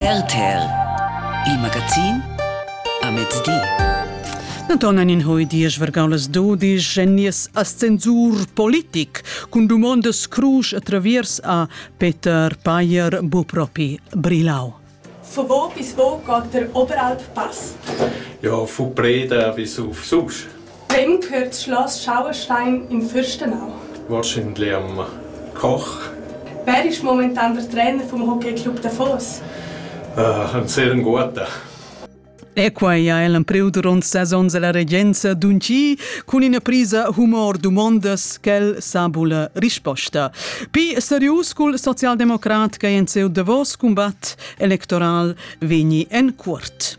RTL Il magazin a mezdi. Naton en in hui diesch vergau las dudisch en nies ascensur politic cun dumondas crusch a traviers a Peter Payer bu propi Brilau. Von wo bis wo geht der Oberalp Pass? Ja, von Breden bis auf sonst. Vegn cuort schloss Schauerstein in Fürstenau? Wahrscheinlich Koch. Wer ist momentan der Trainer vom Hockeyclub Davos? Uh, ein sehr guter. E quai ha el empriu duront ses onns alla regenza d'unchi cun ina prisa humor dumondas ch'el sa bulla risposta. Pi serius cul socialdemocrat che en seu Davos cumbat electoral vegni en cuort.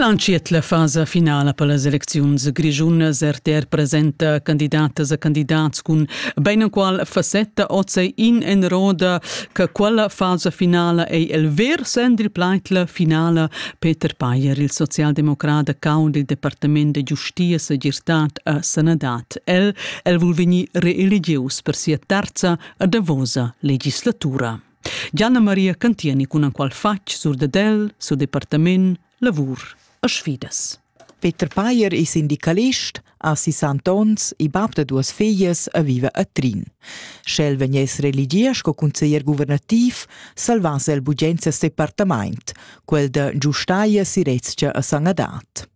El entschiet la fasa finala per las elecziuns grischunas. RTR presenta candidatas e candidats cun beinenqual facetta. Oz ei in en roda che quella fasa finala ei el ver Sendri Pleitler finala. Peter Payer, il socialdemocrata caud il departament de giustia, segirtad e sanadad. el, el vul vegnir reeligius per sia terza a davosa legislatura. Gianna Maria Cantieni cun anqual fatg sur de del, sur departament, lavur a sfidas. Peter Payer è sindicalist, a 60 ons e bab da duas figlias e vive a Trin. Sch'el vegnesse religier sco consiglier guvernativ, salvasse el bugenza sto departament, quel da giustaia si Rezia a Sangadat.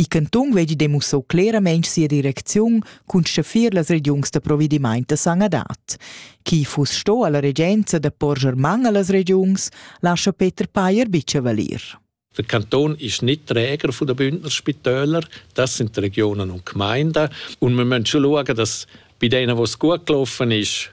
Il cantun vegli demussau claramein sia direcziun cun schaffir las regiuns da provedimaint da sanadad. Chi fuss sto alla regenza da porscher man allas regiuns, lascha Peter Payer bicha valir. Der Kanton ist nicht Träger von den Bündner Spitälern, das sind die Regionen und Gemeinden. Und wir müssen schon schauen, dass bei denen, wo es gut gelaufen ist,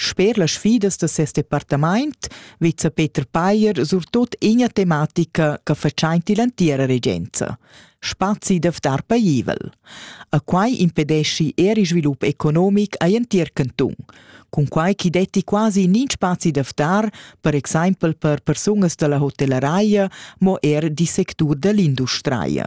Sper las sfidas da ses departamaint vezza Peter Payer surtot ina tematica che fatschaint ill'antiera regenza spazi da ftar paivel. A quai impedeschi er il svilup economic a l'entir cantun, cun quai chi detti quasi nin spazi da ftar, per exaimpel per persunas da la hotelleraia, mo er di sectur da l'industria.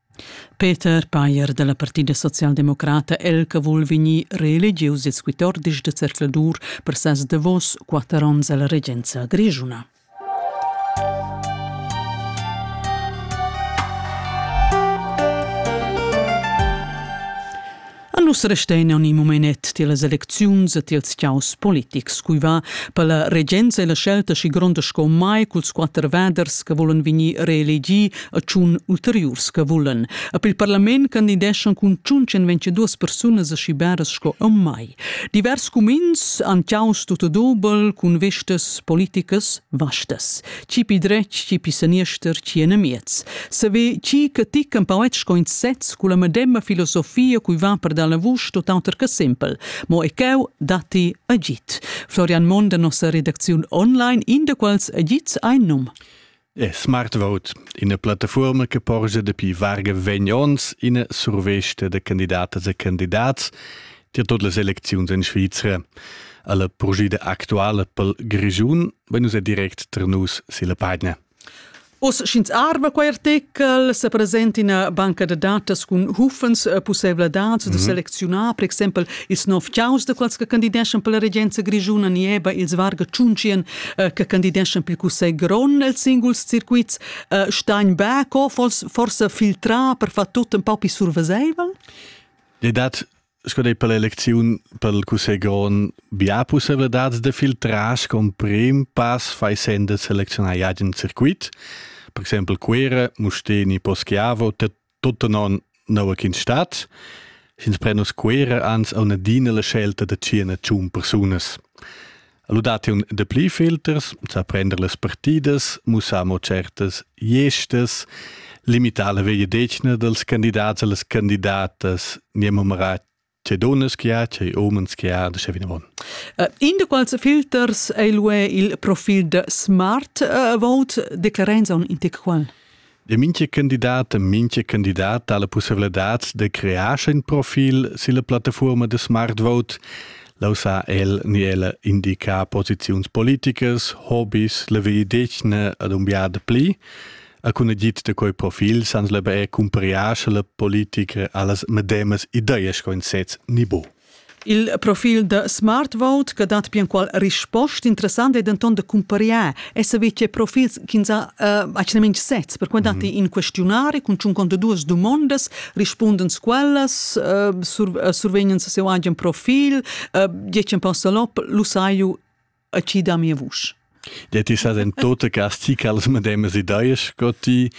Peter Payer da la Partida socialdemocrata el che vul vegnir reelegius ils quatordisch da zercladur per ses davos quatter onns alla regenza grischuna. A nus restein aunc in momenet tiellas elecziuns e tiels chaos politics, cui va per la regenza e la scelta schi gronda sco mai culs quatter vaders che volen vegnir reelegi e tschun ulteriurs che volen. A pel parlament candideschan cun tschunchen vencedurs persunas aschi beras sco a mai. Divers cumins han chaos tut dobel cun vestas politicas vastas. Chi pi dretg, chi pi saniester, chi enamiez. Saver chi che ti campauet sco in sez cu la medemma filosofia cui va per dalla vusch tot auter che simpel, mo e cheu datti agit. Florian Mond da nossa redacziun online, in da quals agits ein num. E Smart Vote, ina plattaforma che porgia dapi varga vegn ons ina survesta da candidatas e candidats tier tot las elecziuns en Svizra. Alla purgida actuala pel Grischun Beh, nus è direct tra nus silla pagina. Oz sch'ins arva quei artikel se presenta ina banca da datas cun hufens eh, pussevladads mm -hmm. de mhm. selezionar per exempel ils nov caus de quels che candideschan per la regenza grigiuna nieba ils varga tschunchien eh, che candideschan per cussegl grond els singuls circuits eh, Steinberg forse filtra per far tut un po' più surveseivel? Le dat Sco dei per l'elecziun per il cussegl grond bia pussevladats da filtrar con prim pass fai sen da selezionar agen circuit. Per exempel Cuera, Musteni, Poschiavo, tutto non nova in stat. Ins prenus Cuera ans a una dina la scelta da cina tschun persunas. Ludatiun de pli filters, sa prender las partidas, mussar mo certas gestas, limitar la vegliedetgna dels candidats e les candidatas, nie numerar che donnas che ha, che omens che ha, sche vinavon. Uh, in de quals filters ei lue il profil de Smart uh, Vote, declarenza on integral? De minche candidat e minche candidat ha la pussevladad de crear in profil silla plattafuorma de Smartvote. Lo sa el ni ella indicar posiziuns politicas, hobbies, la via d'etna ad un biad pli. A cun agit de quei profil sans lebe e cumpariar la politica allas medemas ideas co in sez ni bo. Il profil da Smartvote che dat bianqual risposta interessant è denton da cumpariar e saver che profils ch'ins ha uh, actualmente sez, per quei datti mm -hmm. in questionari cun tschun conto duas dumondas, rispundens quellas, uh, sur, uh, survegnan se seu agen profil, uh, diecen passa lop, lu sai ju e chi da mia vusch. Det is in tota casti che las medemas ideas che ti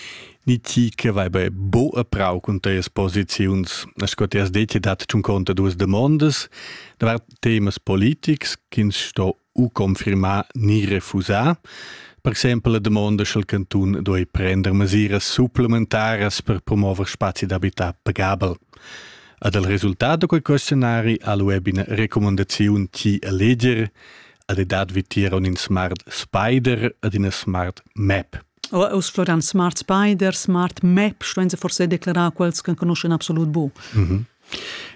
ni ti che vai be bo a prau con te posizions. As che ti has detto dat un conto duas demandas da temas politics che sto u confirmar ni refusar. Per exempel la domanda sch'el cantun doi prender mesiras supplementaras per promuover spazi d'habitat pagabel. Ad el resultat da quei questionari ha lu ebbe ina recomandaziun ti a leger ad e dat vitier un in smart spider ad ina smart map. Uss floran smart spider, smart map, sto ins forse declarar quels che conoscen absolut bu. Mm -hmm.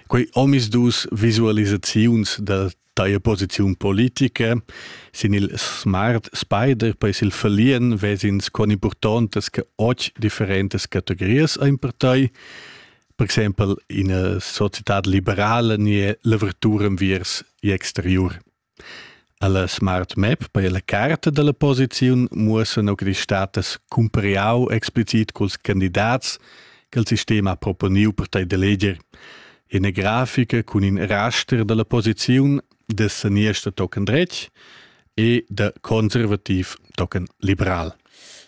Quei omis dus visualisaziuns da Teia posiziun politica sin il Smart Spider per il verlieren vesins con importantes che oggi differentes categorias ein per tai. Per exempel in una società liberale nie lavoratura viers exterior. Alla Smart Map per la carta della posizione muossano che die status cumpariau explicit culs candidats che il sistema ha proponiu per tai d'eleger. ina grafica cun in raster dalla posiziun da saniester tochen dretg e da conservativ tochen liberal.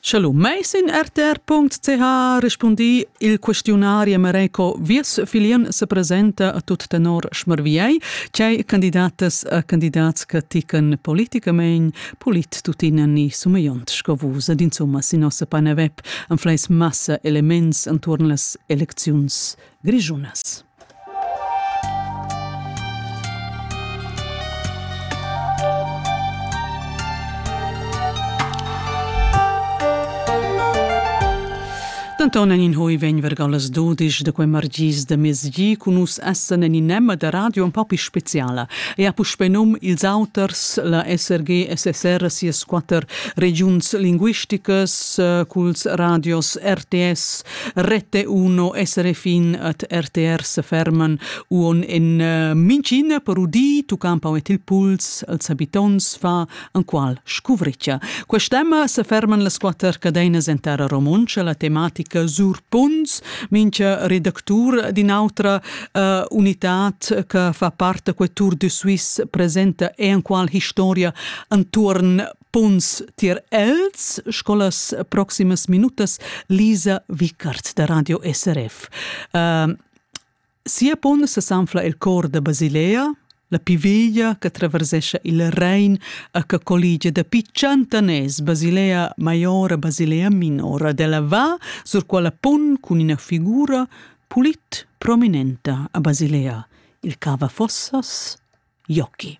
Sche lu meis in rtr.ch rispundi il questionari Mareco Vies filien se presenta a tut tenor schmerviei, cei candidatas a candidats che tican politicament polit tutina ni sumeiont sco vus ed insomma sin nossa pane web an fleis massa elements anturn las elecziuns grischunas. Denton en in hoi vegn vergal las dudisch de quei margis de mezgi cun nus essen en in nemma de radio un po più speciala e ha puspe num ils auters la SRG SSR sias quatter regions linguisticas eh, culs radios RTS Rete uno essere fin at RTR se ferman uon in uh, mincin per udi tu campau et il puls als habitons fa an qual scuvricia. Quest'emma se ferman las quatter cadenas en terra romontscha la tematica Sur Punts, mincha redactur din autra uh, unitat che fa parte que Tour de Suisse presenta e an qual historia anturn Puns tier els sco las proximas minutas Lisa Wickert da Radio SRF. Uh, sia pun sesanfla il cor da Basilea, la piviglia che traversesce il Rhein e che collige dapi centaners Basilea Maiora Basilea Minora della Va sur quella pun con una figura pulit prominenta a Basilea, il cava fossas Iochi.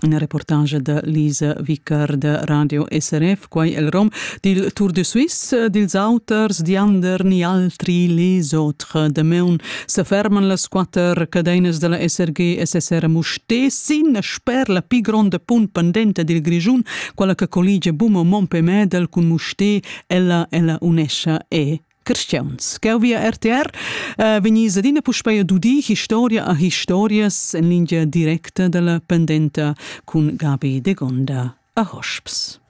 Ina reportagia da Lisa Vicar da Radio SRF, quai el rom dil Tour de Suisse. Dils auters diander ni altri les autres. Damaun seferman las quatter cadeinas dalla SRG SSR Mustessin sper la pli gronda punt pendenta dil Grischun, quella che colligia Bum e Mompé Medel cun Mustè, ella ella unescha e Cristians. Gau via RTR uh, vegnis adina puspei a dudi historia a historias en lingia directa dalla pendenta cun Gabi de Gonda a Hosps.